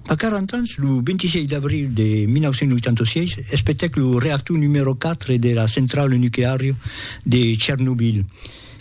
A 40 ans, lo 26 d'abril de 1986, espetèc lo reactor numèro 4 de la centrala nucleària de Chernobyl,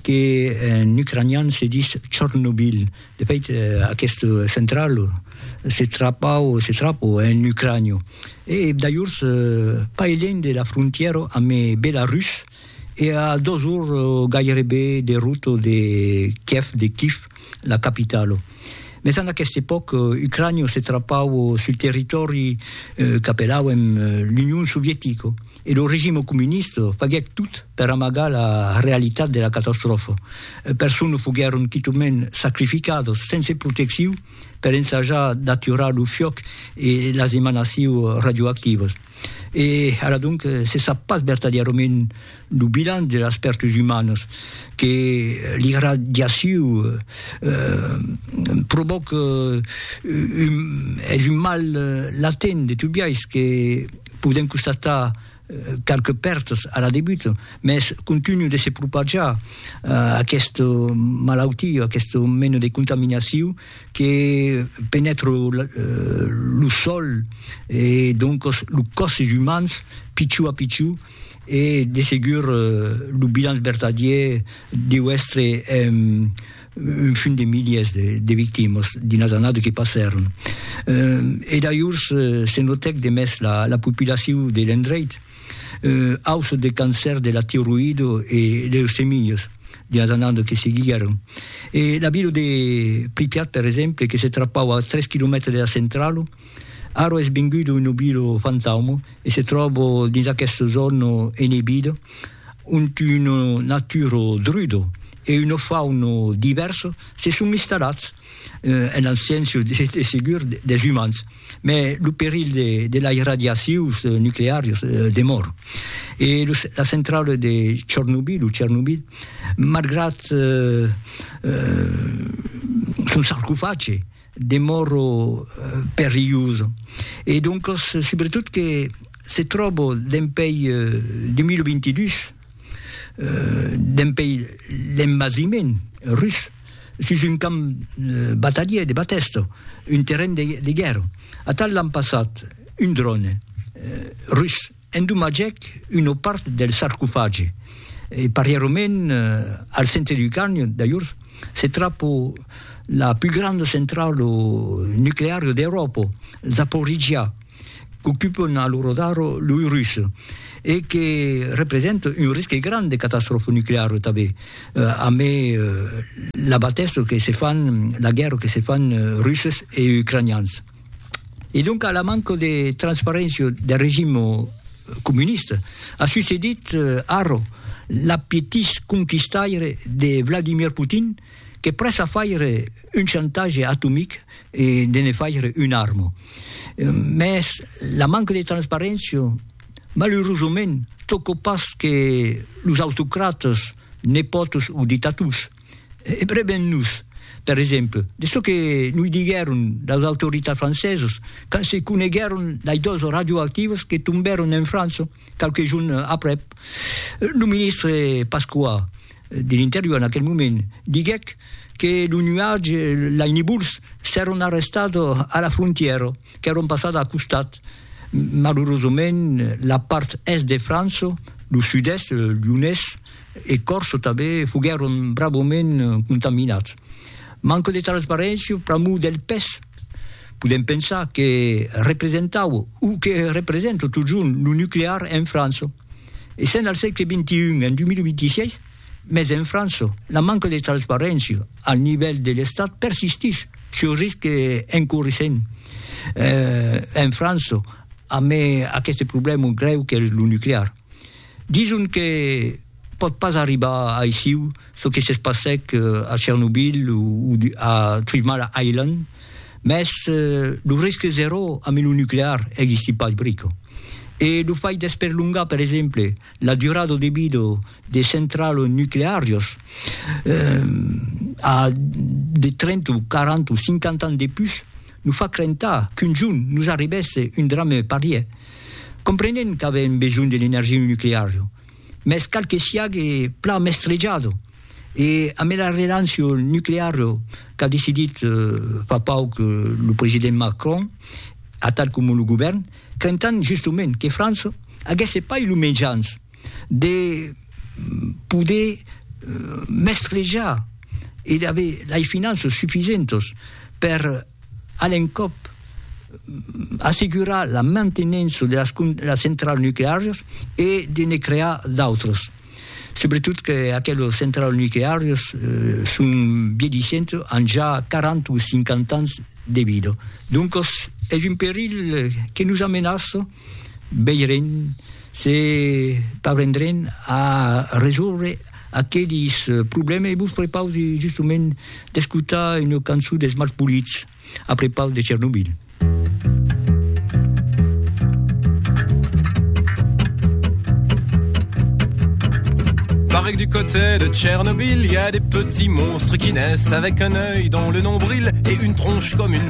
que en ucranian se ditz Chornobyl. De fait, aquesta centrala se trapau o se trapò en Ucrània e, dajors, pas elènh de la frontièra amé Belarus. E a dos ors gairebe de rota de Kièv, de Kif, la capitala. Mès en aquesta epòca, Ucrània se trapava sul territòri qu'apelàuem l'Union Sovietica e lo regime comunista faguèt tot per amagar la realitat de la catastròfa. Personas foguèron quitament sacrificadas sense proteccion per ensajar d'aturar lo fiòc e las emanacions radioactivas. E ara donc se sap pas vertadièrament lo bilan de las pèrtus umanas que l'irradiaciu provòca, es un mal latent de tot biais que podèm constatar qualques pèrtas a la debuta, mès continua de se propajar aquesta malautia, aquesta mena de contaminaciu que penètre lo sòl e doncos lo còs des umans pichó a pichó e de segur lo bilanç vertadièr deu èstre un fum de milièrs de victimas dins las annadas que passèron. E dajors se notèc de mès la populacion de l'endreit, aus de cancèr de la tiroïdo e leucemias dins las annadas que seguiguèron. E la vila de Pripyat, per exemple, que se trapava a tres quilomètres de la centrala, ara es venguda una vila fantauma e se tròba dins aquesta zòna enebida, ont una natura druda e una fauna divèrsa se son installats. en abséncia de segur des umans, mai lo perilh de las radiacions nucleàrias demòra. E la centrala de Chornobyl, o Chernobyl, malgrat son sarcofage, demòra perilhosa, e doncas subretot que se tròba dempèi 2022, dempèi l'envasiment rus. sus un camp batadier de Batèsto, un terren de guèrra. Atal l'an passat un dròne rus endomatgèc una part del sarcofagi e parièrament al centre du canyon d'ajorn se trapa la pus granda centrala nucleara d'Euròpa, Zaporizhia. qu'ocupon a lo radar loi rus e que representa un risque grand de catastròfa nucleara tanben, amb la batèssa que se fan, la guèrra que se fan russes e ucranians. E doncas la manca de transparéncia del regim comunista a succedit ara l'appetís conquistaire de Vladimir Putin, que prèssa faire un chantatge atomic e de ne faire una arma. Mès la manca de transparéncia, malurosament, tòca pas que los autocratas, nepòts o dictators. Brevem-nos, per exemple, de çò que noi diguèron las autoritats francesas quand se coneguèron las dòzas radioactivas que tombèron en França qualques jorns aprèp lo ministre Pasqua, de l'Interior en aquel moment diguèc que lo nuatge, lei nibuls, s'èron arrestat a la frontièra, qu'èron passat a costat. Malurosament, la part Èst de França, lo Sud-Èst, Lyonés e Còrse tanben, foguèron bravament contaminats. Manca de transparéncia, pr'amor del pes, podèm pensar que representava o que representa totjorn lo nuclear en França. Essent al sègle XXI, en 2026, mès en França, la manca de transparéncia al nivèl de l'Estat persistís, çò risc encourissent en França amb aqueste problèma grèu qu'es lo nuclear. Dison que pòt pas arribar aissiu çò que se passèc a Chernobyl o a Three Mile Island, mès lo risque zèro amb lo nuclear existí pas brico. E lo fai d'esperlongar, per exemple, la durada de vida de centrals nucleàrias a de 30 o 40 o 50 ans de pus nos fa crentar qu'un jorn nos arribèsse un drame parièr. Comprenent qu'avèm besonh de l'energia nucleària, mès cal que siague plan mestrejado e amb era relancion nuclear qu'a decidit fa pauc lo president Macron, atal coma lo govèrn, crentan justement que França aguèsse pas lo mejans de poder mestrejar e d'aver lei finanças sufisentas per A l'encòp, assegurar la mantenença de las centralas nucleàrias e de ne crear d'autras, subretot que aquelas centralas nucleàrias son vièlhissentas, an ja 40 o 50 ans de vida. Doncas, es un perilh que nos amenaça. Veirem se parvendrem a resòrver aquelis problèmes e vos prepausi justament d'escotar una cançon dels Malpolits a prepaus de Chernobyl. Pareil du côté de Chernobyl, il y a des petits monstres qui naissent avec un œil dans le nombril et une tronche comme une